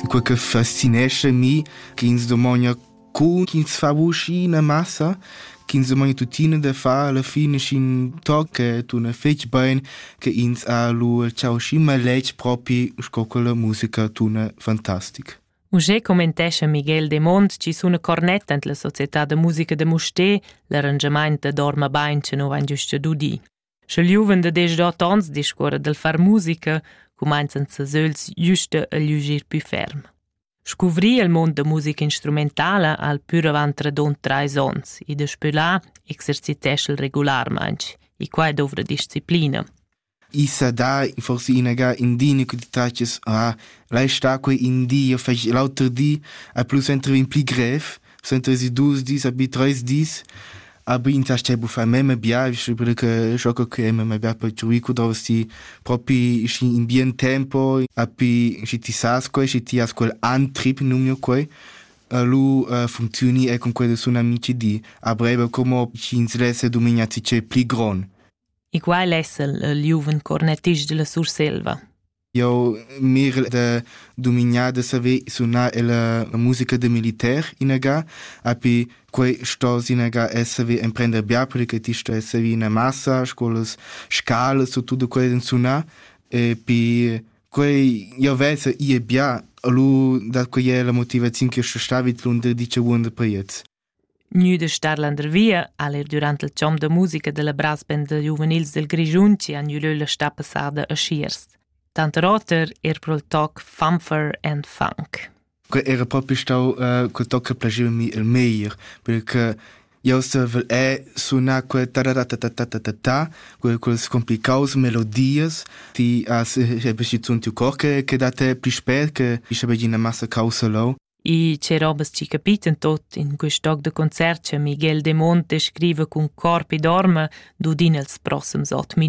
quei che fascinesce mi, ch'ins domogna cu ch'ins fa vusch ina massa, ch'ins domogna tuttina da far alla fine sc'in toc che tuna fetg bein, che ins ha lu ciau schi maletg propi sco che la musica tuna fantastic. Uschè commentescha Miguel Demont chi suna cornett ant la società da musica da Mustér l'arrangiamaint da Dorma bain che nu vain giusto dudi. Sche il giuven da desch onns discuora dal far musica, cumainzan ses ögls güsta a gliugir pü ferm. Scuvrir il mond da musica instrumentala al pür avant radund trais ons e daspö là exercitescha'l regularmaing, e quai dovra disciplina. I sa dà forse inagà in di ne quantitatias ha, lai sta quei in di e fai l'auter di, a plus entri in pli grev, Sentezi dus dis, abi treis dis, abi in tastè buffà mema biavisch perché scho co che mema bia per truì cu dovresti propi schi in bien tempo api schi ti sas quei schi ti has quel antrip numnio quei lu uh, funzioni e con quelli sono amici di a breve come ci interesse domenica ti c'è pli gron e qual è il giuven cornettist della Surselva Eu mir da dumignar da saver sunar la musica da militar inaga, api quei stos inaga es saver emprender bia perché ti stos saver ina massa, scolas, scalas u tutto quei den sunar e pi quei io vesa ie bia, lu dat quei è la motivaziun che sto stavit lun da dice buon da paiets. Gnü da star landervia ha'l eir dürant il chom da musica da la brassband da giuvenils dal Grischun chi ha gnü lö la stà passada a Schiers. Tanter oter eir pro'l toc Funfer and Funk. Que era propi stau uh, quel toc che piaceva mi il meglier, perché io sevel è sunar quel ta ta ta ta ta ta ta ta quel quels complicaus melodies ti as e beschizzun tiu cor che che da te pli spät che ich habe eine Masse causa lau E che robas chi capiten tot in quist toc da concert cha Miguel de Monte scriva cun corp ed orma dud in els prossems ot